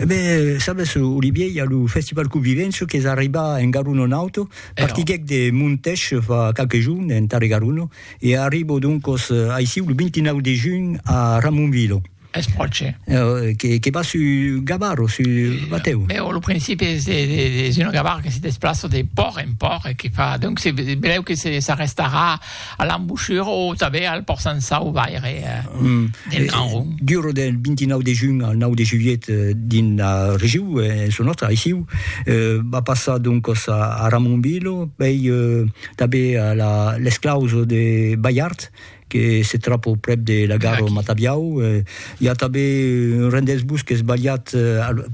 E ben, sabes, Olivier, i a lo Festival Convivenço qu'es arribat en Garuno Nauto, partiguèc de Montech fa qualques jorns, en Tarre Garuno, e arribo doncos aicí lo 29 de junh a Ramonvilo. Es pròche. Que va sus Gavaro, sus Batèu. Ben, lo principi es un Gavaro que se desplaça de pòrt en pòrt e que fa... Donc, se belèu que s'arrestarà... A l'embochura o tanben al pòrt Sansau vaire del Gran Ron. Dura del 29 de junh al 9 de julhet dins la regiu, en çò nòstre aissiu, va passar doncas a Ramonville, pei tanben a l'esclaus de Balhard que se tròba prèp de la gara Matabiau, i a tanben un rendesbus qu'es balhat,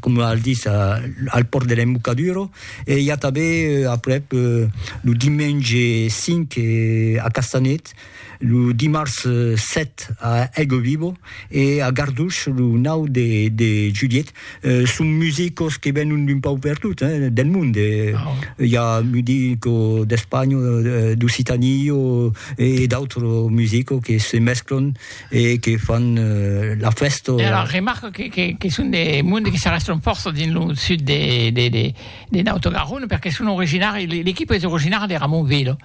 coma al ditz, al pòrt de l'Embocadura. E i a tanben aprèp lo dimenge 5 a Castanet, lo dimars 7 a Aiguevivo e a Garduch lo 9 de julhet. Son musicos que venon d'un pauc pertot, del mond. I a musico d'Espanha, d'Occitània e d'autres musicos que se mesclan. e que fan la fèsta. E alors remarco que que que son de monde que s'arrèstan fòrça dins lo sud de de de de Naut Garona perque son originari l'equipa es originara de Ramonvila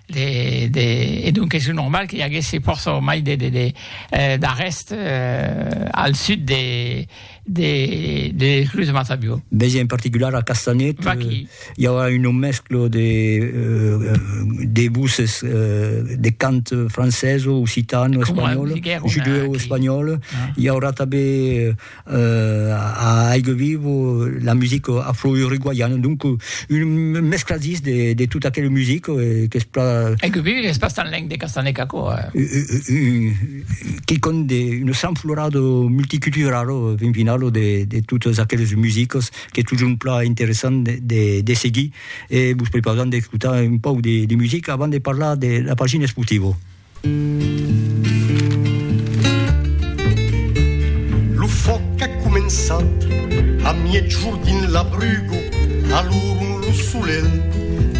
de de e donc es normal que i aguèsse fòrça mai de de de d'arrèst al sud de de, de Cruz Mazabio. Vegi en particular a Castanet, Vaqui. hi aura un mesclo de, uh, de voces, uh, de cant francès, occitano, espanyol, judeu espanyol. Ah. Hi aura també uh, a Aigue Vivo la musique afro-uruguayana, donc un mescladís de, de tota aquella musique eh, que es pla... Aigue Vivo és bastant leng de Castanet, Caco. Eh? Uh, uh, uh, quicòm de un sanflorado multiculturalo fin finalo de de totes aqueles musicos qu'es totjorn plan interessant de de de seguir e vos prepausam d'escotar un pauc de de musica avant de parlar de la pagina esportivo. Lo fòc a començat a miègjorn dins la bruga, alorn lo solelh